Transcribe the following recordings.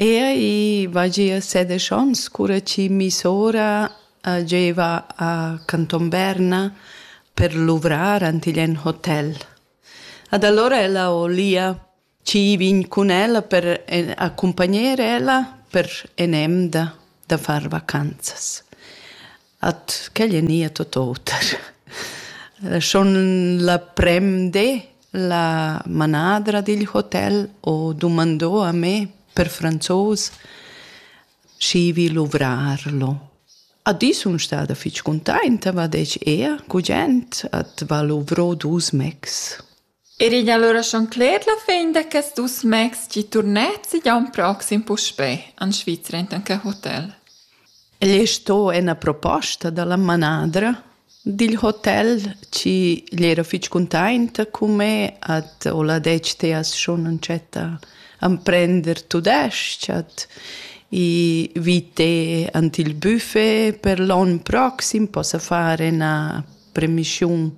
Ea, i va gia sedesch ons cura chi missora giaiva a Canton Berna per luvrar ant igl en hotel. Ad allora ella ho lia chi vegn cun ella per accumpagner ella per en'emda da far vacanzas. At quel è nia tot oter. Schon la prem di la manadra digl hotel ho dumandò a me per franzos schi vi luvrar lo. A di sun stada fich cuntainta, va detg, ea, gugent, at va luvrò dus mecs. Era igl allura schon cler la fin da quests dus mecs tgi turnetsi gia in proxim puspè en Svizra enten quei hotel. El ei sto ena proposta dalla manadra digl hotel chi gli era fitg cuntainta cun me at ho la detg te as schon entschetta emprender tudesc at i vi te ant il buffet per l'on proxim possa far ena premissiun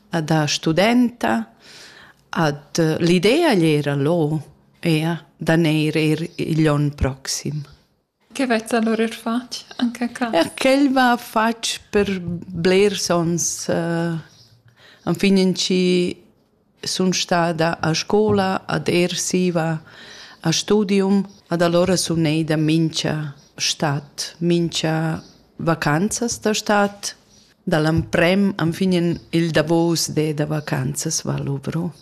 da studenta ad l'idea era lo ea da neir er igl onn proxim. Che vezza allora er fatg anche ca? Ja, quel va fatg per blers ons uh, an fin in ci sun stada a scola, ad ersiva, a studium, ad allora sun eida mincha stat, mincha vacanzas da stat. Dall'amprem enfin il davos de da vacanzas va luvro.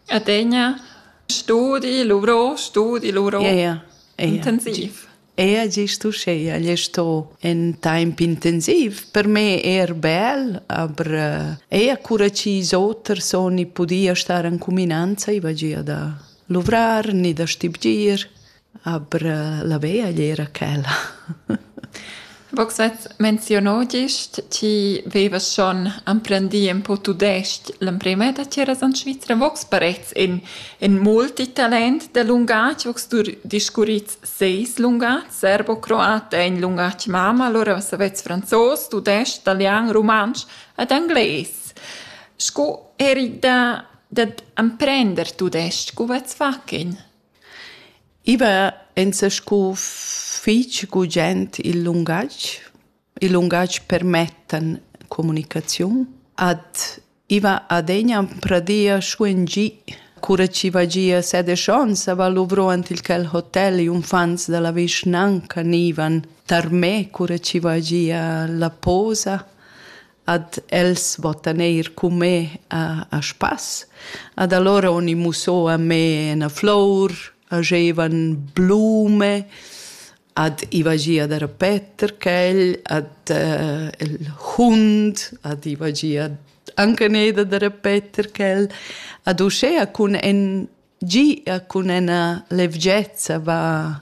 Adegna studi, luvro, studi, luvro. Ja, ja. ja. Intensiv. Era gest uschia gli sto in temp intensiv, per me er bel, aber äh, eir cura ch'is oter son i pudia star in cuminanza, i va gia da luvrar ni da stibgir, aber äh, la veglia era quella. Vogs at menziono gist, ti vevas schon emprendì ün po tudesc l'emprema da tgiras en Svizra. Vogs parets in in multitalent da lungatg, vogs tu discurrits seis lungats, serbo, croat è in lungatg mama, allora savets franzos, tudesc, italian, rumantsch ed anglais. Sco eri da dad emprender tudesc, co vats far in? I va enzas scu fich gugent il lungatg. Il lungatg permettan comunicaziun. Ad i va adegna pradia scu ün gi. Cura chi va gia set e schons a va luvro ant il quel hotel i unfants da la vischnanca gnivan tar me cura chi va gia la posa. ad els vottan eir cun me a, a spass. Ad allora oni musso a me na flour, agevan blume, ad ivagia der Peter quel, ad uh, il hund, ad ivagia anche neda der Peter quel, ad uscea cun en gi a cun ena levgezza va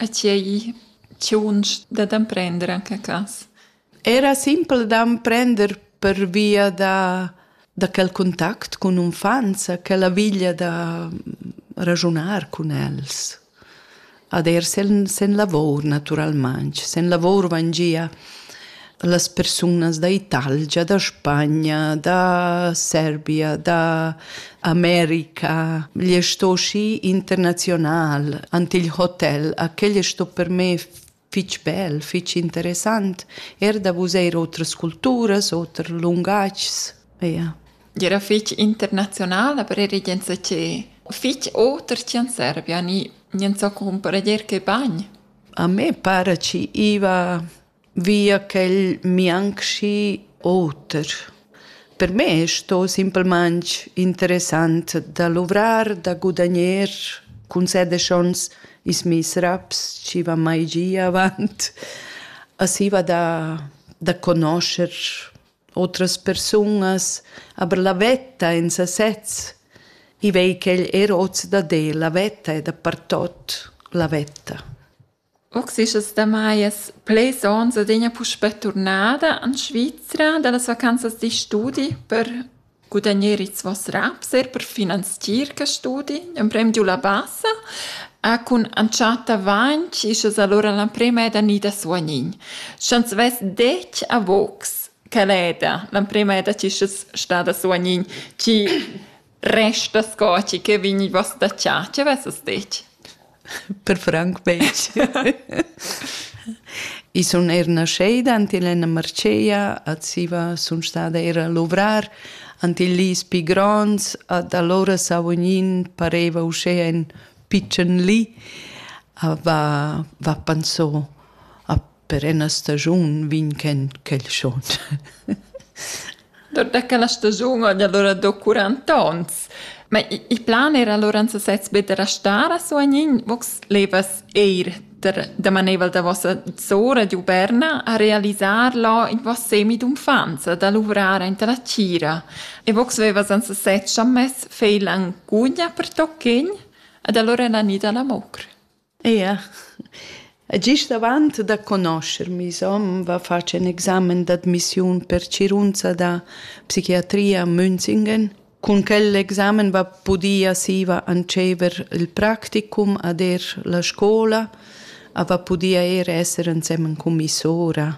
E tgei tgiunsch dad emprender en quei cass? Era simpel d'emprender pervia da, da quel contact cun unfants, quella viglia da ragiunar cun els. Ad er sen, sen lavor, naturalmain. Sen lavor van gia da las persunas da Italgia, da Spagna, da Serbia, da America. Gli è sto schi internazional, ante il hotel, a quel è sto per me fitg bel, fitg interessant, er da vus eir otras culturas, oter lungatgs. Ja. Era fitg internazional, aber era gente che fitg oter che in Serbia, ni niente so comprendier che bagn. A me pare ci iva via ch'el mianchi oter. Per me sto simplamaing interessant da luvrar, da gudagner cun set e schons ils meis raps chi van mai gia avant. Aschi va da da conoscher otras persunas, aber la vetta in sasez, i vei ch'el er hoz dad el, la vetta è dapertot la vetta. Uxis damai es plirs ons adüna puspè turnada in Svizra da las vacanzas d'istudi per gudagner its voss raps, eir per finanzier quist studi. Ün prem di u la basa cun entschatta vainch isch es alura l'emprema ed gnì da suognin. Sch'ans vess det a vogs, quel eda l'emprema eda chi ches sta da suognin, chi Resta sco ti che vegniva statgà, tge avesses detg? Per franc betg. I sun eir nascheda ant il Enna Marcea, a Ziva sun stada eir a luvrar, ant il Lis pi gronds, ad alura Savognin pareva uschea ün pitschen li, a va, va panso a per ena stagiun vin ken quel schon. Dort che la stagiun ogni allora do 40 ons. Ma il plan era allora anzi sez be da restare a Soagnin, vos levas eir da maneivel da vossa zora d'Uberna a realisar lo in vos semi d'unfanza, da luvrare in la cira. E vox vevas anzi sez chammess feilan gugna per tocchin, ad allora la nida la mocr. Ia. E gist avant da conoscher meis hom va fatg ün examen d'admissiun per cirunza da psichiatria a Münzingen. Cun quel examen va pudia siva antschever il practicum ad eir la scoula a va pudia eir esser ensemen cun meis sora.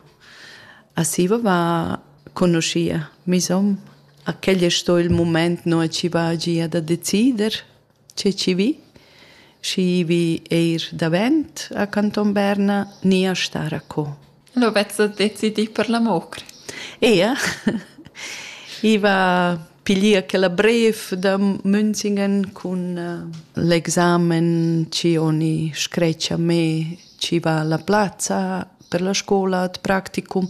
A siva va conoschia meis hom. A quel es sto il mumaint no chi va gia da decider. che chi vi. Schi vi eir davent a Canton Berna ni a star a co. Lo vezzo decidì per la mocra. Ea. I va piglier quella bref da Münzingen cun uh, l'examen ci oni screccia me ci va la plazza per la scola ad practicum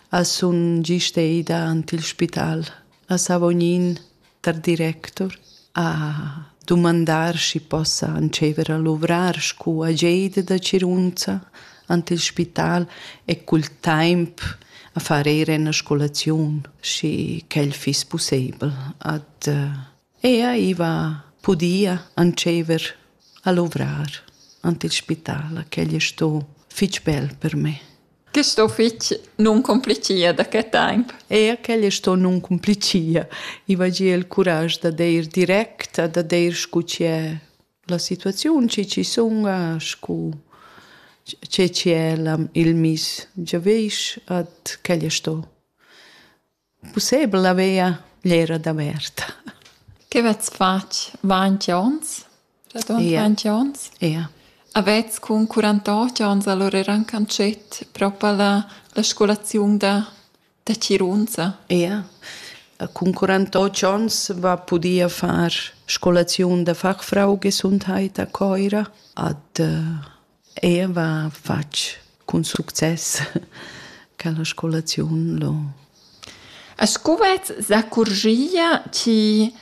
a sun giste ida ant il spital. a Savognin tar directur a dumandar schi possa antschever a luvrar scu ageida da Cirunza ant il spital e cul taimp a far eir üna scolaziun, schi ch'el fiss pussebel. Ad ella iva pudia antschever a luvrar ant il spital, ch'el es sto fich bel per me. Quist uffizi nun cumplichia da que temp. Eir quel es sto nun cumplichia. I vagia il curaj da deir direct e da deir scu chi'è la situaziun, chi chi sunga, scu che chi è il miss giavüsch, ed quel es sto. Pussebel haveva gl'era davert. Che vezs fatg ventg onns? Dadont Ia. ventg onns? Ia. Avets cun quarantotg onns allora rancanschet propa la, la scolaziun da, da Cirunza? Ia. Cun quarantotg onns va pudia far scolaziun da fachfrau gesundheit a Coira ad uh, Eva fatg cun success quella scolaziun lo. A scuvez s'accurgia chi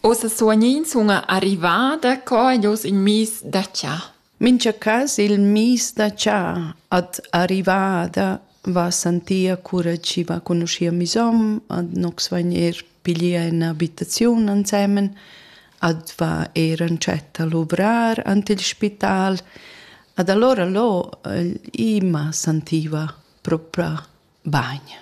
ossa suognins una arrivada co jos in mis da cha. Mincha cas il mis da cha ad arrivada va sentia cura chi va conoschia mis hom, ad nox vagner piglier ün'abitaziun ansemen adva eir antschet a luvrar ant il spital ad allora lo ima sentiva propa bagn,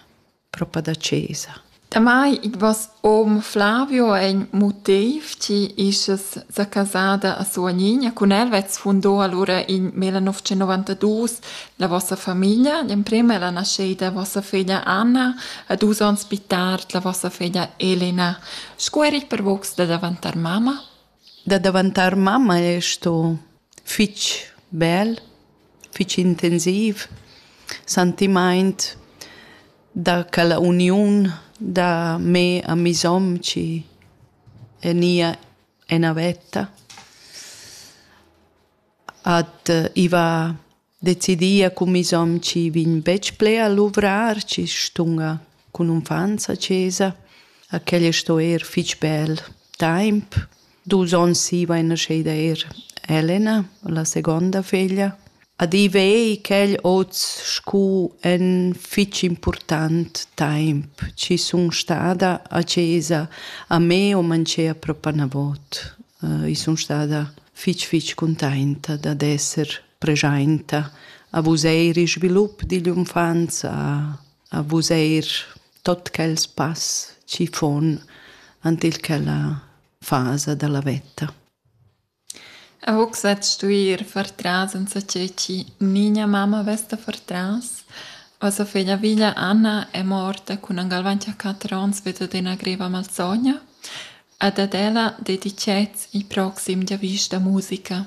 propa da chesa. Damai id vos om Flavio è in motiv chi isches sa casada a Suanigna cun el vets fundò allora in 1992 la vossa famiglia, l'emprema è la nasceida vossa figlia Anna, a dus ans più tard la vossa figlia Elena. Sco er il pervocs da daventar mamma? Da daventar mamma è sto fitg bel, fitg intensiv, sentimaint da quella uniun da me a mi som chi è nia ena vetta. Ad uh, iva decidia cun mes hom chi vegn betg ple a luvrar, chi stunga cun unfants a chesa. A quel sto eir fich bel taimp. Dus ons siva è nascheda eir Elena, la segonda feglia. A div ei quel hoz scu ün fich important taimp chi sun stada a chesa a me o manchea propa 'na vot. I sun stada fich fich cuntainta dad esser preschainta a vus eir il svilup digl unfanza, a vus eir tot quels pass chi fon ant il quella fasa da la vetta. A hoc sat stuir far tras insacé chi nigna mamma vesta far tras. O sa figlia viglia Anna è morta cun an galvanti a quattro ons vedo de una greva malsogna, ad ad ella dedicet i proxim dia vista musica.